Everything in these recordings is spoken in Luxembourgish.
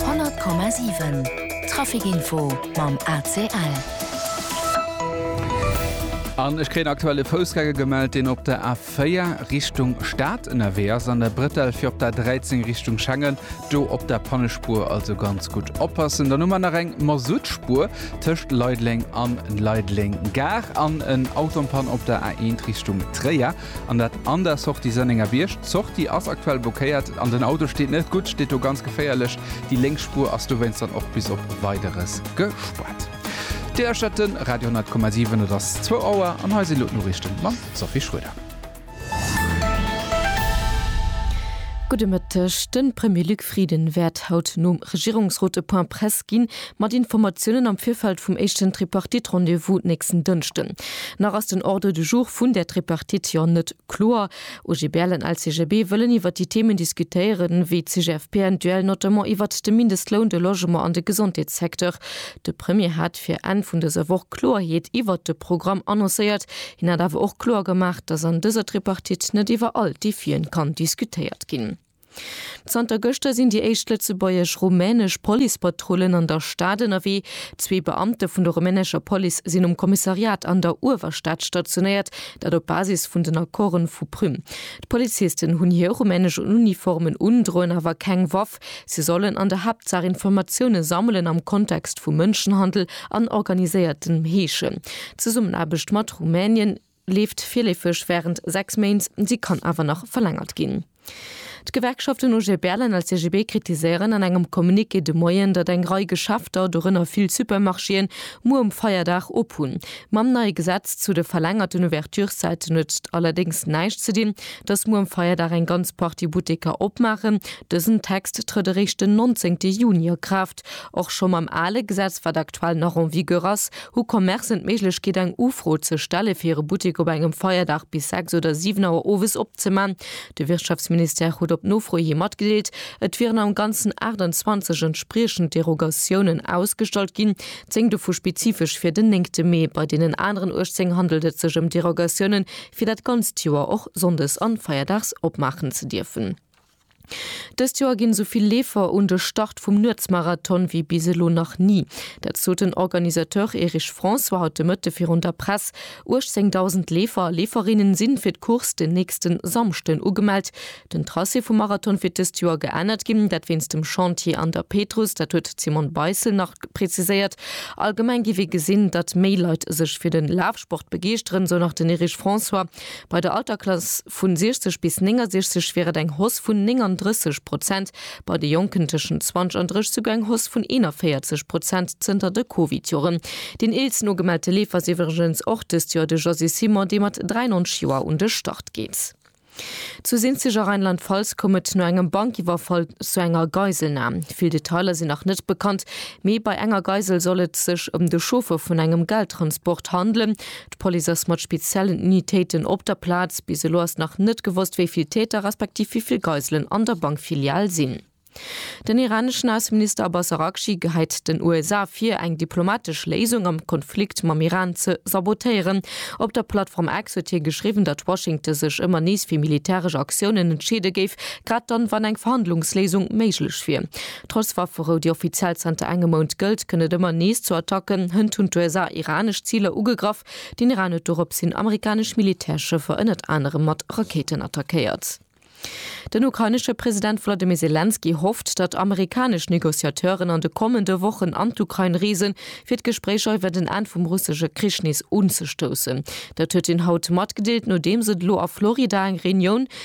100,7 Trafic Info mam ACL. An ech kréien aktuell e Foussgänger gemellt, deen op der A4 Richtung Stad ënnerwee ass, an der Bretelle fir op der A13 Richtung Schengen, do op der Pannespuer. Also ganz gutt oppassen. Dann hu mer nach eng Masuttspuer tëscht Leideleng an Leideleng Gare an en Auto an Panne op der A1 Richtung Tréier. An dat an der Sortie Sënnenger Bierg. D'Sortie ass aktuell blockéiert an den Auto steet net gutt, steet do ganz geféierlech. Déi lénks Spuer ass dowéinst dann och bis op Weideres gespaart. Dir lauschtert de Radio 10,7, et ass zwou Auer an hei si lo d'Noriichten mam Sophie Schroeder. Gudde Mëtteg, De Premier Luc Frieden wäert haut nom Regierungsrot e Point presse. verstaarkt ginn, mat Informatiounen am Virfeld vum éischten Tripartite-Rendez-vous nächsten Dënschden. Nach ass den Ordre du jour vun där Tripartite jo net kloer. OGBL an LCGB wëllen iwwer déi Themen diskutéieren, wéi d'CGFP-N-Duel, notamment iwwert de Mindestloun, de Logement an de Gesondheetssecteur. De Premier hat fir Enn vun dëser Woch Kloerheet iwwert de Programm annoncéiert. Hien hat awer och kloer gemaach, datt an dëser Tripartite net iwwer all d'Defien kann diskutéiert ginn. Zanter gëschter sinn déi éischt lëtzebuergesch-rumänesch Policepatrullen an der Stad ënnerwee. Zwee Beamte vun der rumänescher Police sinn um Kommissariat an der Uewerstad stationéiert, dat op Basis vun den Accorden vu Prüm. D'Polizisten hunn hir rumänesch Uniformen un, droen awer keng Waff. Si sollen an der Haaptsaach Informatioune sammelen am Kontext vu Mënschenhandel an organiséiertem Heeschen. D'Zesummenaarbecht mat Rumänien. leeft virleefeg wärend 6 Méint, si kann awer nach verlängert ginn. D'Gewerkschaften OGBL an LCGB kritiséieren an engem Communiqué de Moien, datt eng Rei Geschäfter, dorënner vill Supermarchéen, muer um Feierdag op hunn. Mam neie Gesetz zu de verlängerten Ouverturszäiten huet et allerdéngs näischt ze dinn, datt muer um Feierdag eng ganz Partie Butteker opmaachen. Dësen Text trëtt eréischt den 19 Juni a Kraaft. Geschäft. Och scho mam ale Gesetz, wat aktuell nach en vigueur ass, hu Commercen d'Méiglechkeet eng Ufro ze stelle fir hire Buttek op engem Feierdag bis 6 oder 7 Auer owes opzeman. De Wirtschaftsministère huet op Nofro hi matgedeelt, et wieren am Ganzen 28 entspriechend Derogatiounen ausgestallt ginn, 10 dovu spezifesch fir den néngte Mee. Bei deenen aneren 18 handelt et sech ëm Derogatiounen, fir dat ganzt Joer och sonndes an feierdags opmaachen ze dierfen. Dëst Joer ginn esou vill Leefer un de Start vum Nuetsmarathon wéi bis elo nach ni. Dat sot den Organisateur Erich François haut de Mëtte virun der Press. 18.000 Leefer a Leeferinnen sinn fir d'Course den nächsten Samschden ugemellt. Den Tracé vum Marathon wier dëst Joer geännert ginn, dat wéinst dem Chantier an der Pétrus. Dat huet d'Simone Beissel nach preziséiert. Allgemeng géif ee gesinn, datt méi Leit sech fir den Lafsport begeeschteren, sou nach den Erich François. Bei der Alterklass vu 60 bis 69 wier et eng Hausse vun 39 Prozent, bei de Jonken tëschent 20 an 30 souguer eng Hausse vun 41 Prozent zënter de Covid-Joren. Deen eelsten ugemellte Leefer ass iwwregens och dëst Joer de Josy Simon, dee mat 93 Joer un de Start geet. Zu Sinzig a Rheinland-Pfalz koum et no engem Bankiwwerfall zu enger Geiselnam. Vill Detailer sinn nach net bekannt, mee bei enger Geisel soll et sech ëm de Chauffeur vun engem Geldtransport handelen. D'Police ass mat speziellen Unitéiten op der Plaz. Bis elo ass nach net gewosst, wéi vill Täter respektiv wéi vill Geiselen an der Bankfilial sinn. Den iraneschen Ausseminister Abbas Araghchi geheit den USA vir, eng diplomatesch Léisung am Konflikt mam Iran ze sabotéieren. Op der Plattform X huet hie geschriwwen, datt Washington sech ëmmer nees fir militäresch Aktiounen entscheede géif, grad dann, wann eng Verhandlungsléisung méiglech wier. Trotz Wafferou, déi offiziell zanter engem Mount gëllt, kënnt et ëmmer nees zu Attacken. Hënt hunn d'USA iranesch Ziler ugegraff. Den Iran huet doropshin amerikanesch Militärschëffer ënnert anerem mat Rakéiten attackéiert. Den ukrainesche President Wladimir Selenskyj hofft, datt amerikanesch Negociateuren an de kommende Wochen an d'Ukrain reesen, fir d'Gespréicher iwwer en Enn vum russesche Krich nees unzestoussen. Dat huet hien haut matgedeelt, nodeems et elo a Florida eng Reunioun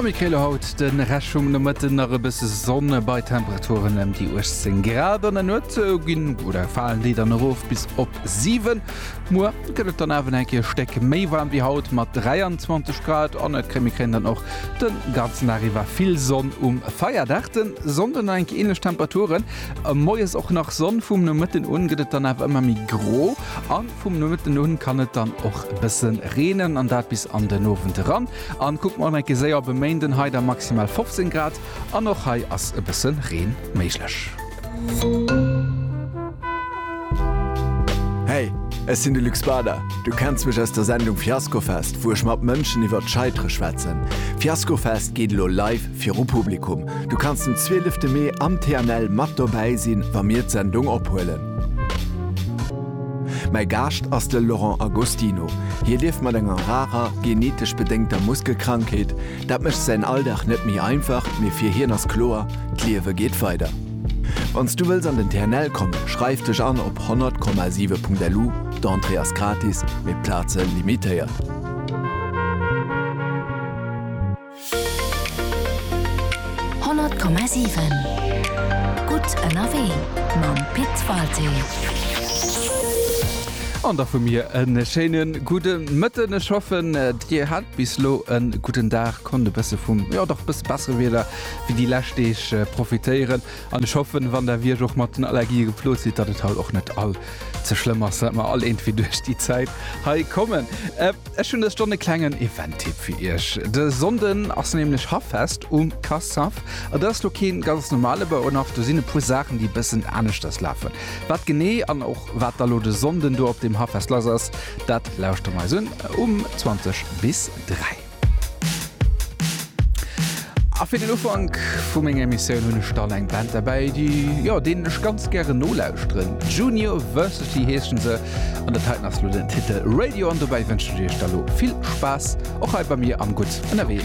A méi Kéiler haut de Rescht vum Nomëtten, nach e bësse Sonn bei Temperaturen ëm déi 18 Grad. An der Nuet ginn oder falen déi dann erof bis op 7. Muer gëtt et dann awer nach eng Kéier e Stéck méi waarm wéi haut mat 23 Grad. An et mir kréien dann och de ganzen Dag iwwer vill Sonn um Feierdag. De Sonnde nach eng Kéier änlech Temperaturen, moies och nach Sonn. Vum Nomëtten un gëtt et dann awer ëmmer méi gro an. Vum Nomëtten un kann et dann och e bësse reenen, an dat bis an den Owend eran. An kuckt mol enke séier op e Méinden, hei da maximal 15 Grad an och hei ass e bësse Reen méiglech. Hey, ech sinn de Luc Spader. Du kenns mech aus der Sendung Fiaskofest, wou ech mat Mënschen iwwert d'Scheitere schwätzen. Fiaskofest geet elo live viru Publikum. Du kanns den 12 Mee am TNL mat dobäi sinn, wa mir d'Sendung ophuelen. Mäi Gaascht ass de Laurent Agostino. Hie lieft mat enger rarer, genetesch bedéngter Muskelkrankheet. Dat mécht säin Alldag net méi einfach, mee fir hien ass kloer, d'Liewe geet weider. Wann s du wëlls an den TNL kommen, schreif dech an op 100,7.lu, d'Entrée ass gratis, mee d'Plaze limitéiert. 100,7 Gutt ënnerwee mam Pit Walté. An da vu mir e schéine gudde Mëtten. Ech hoffen, Dir hat bis elo e gudden Dag, konnt e bësse vum, jo dach, e bësse bessere Wieder wéi déi lescht Deeg profitéieren. An ech hoffen, wann Der wéi ech och mat den Allergië geplot sidd, datt et haut och net all ze schlëmm ass, datt mer all eengt wéi duerch déi Zäit hei kommen. Ech hunn dëst Joer e klengen Event-Tipp fir Iech. De Sonnden ass nämlech Haffest um Cassav. Et ass lo kee ganz normale Bauernhaff, do sinn e puer Saachen, déi e bëssen aneschters lafen. Wat genee an och wat da lo de Sonnden do op deem Haffest lass ass, dat lauschtere mer eis un um 20 bis 3. A fir den Ufank vu menger Emissioun hunn ech dann eng Band derbäi, déi, jo, deenen ech ganz gären nolauschteren. Junior Versity heeschen se. An dat heiten ass lo den Titel Radio an dobäi wënschen ech iech da lo vill Spaass och hei bei mir am Gutt ënnerwee.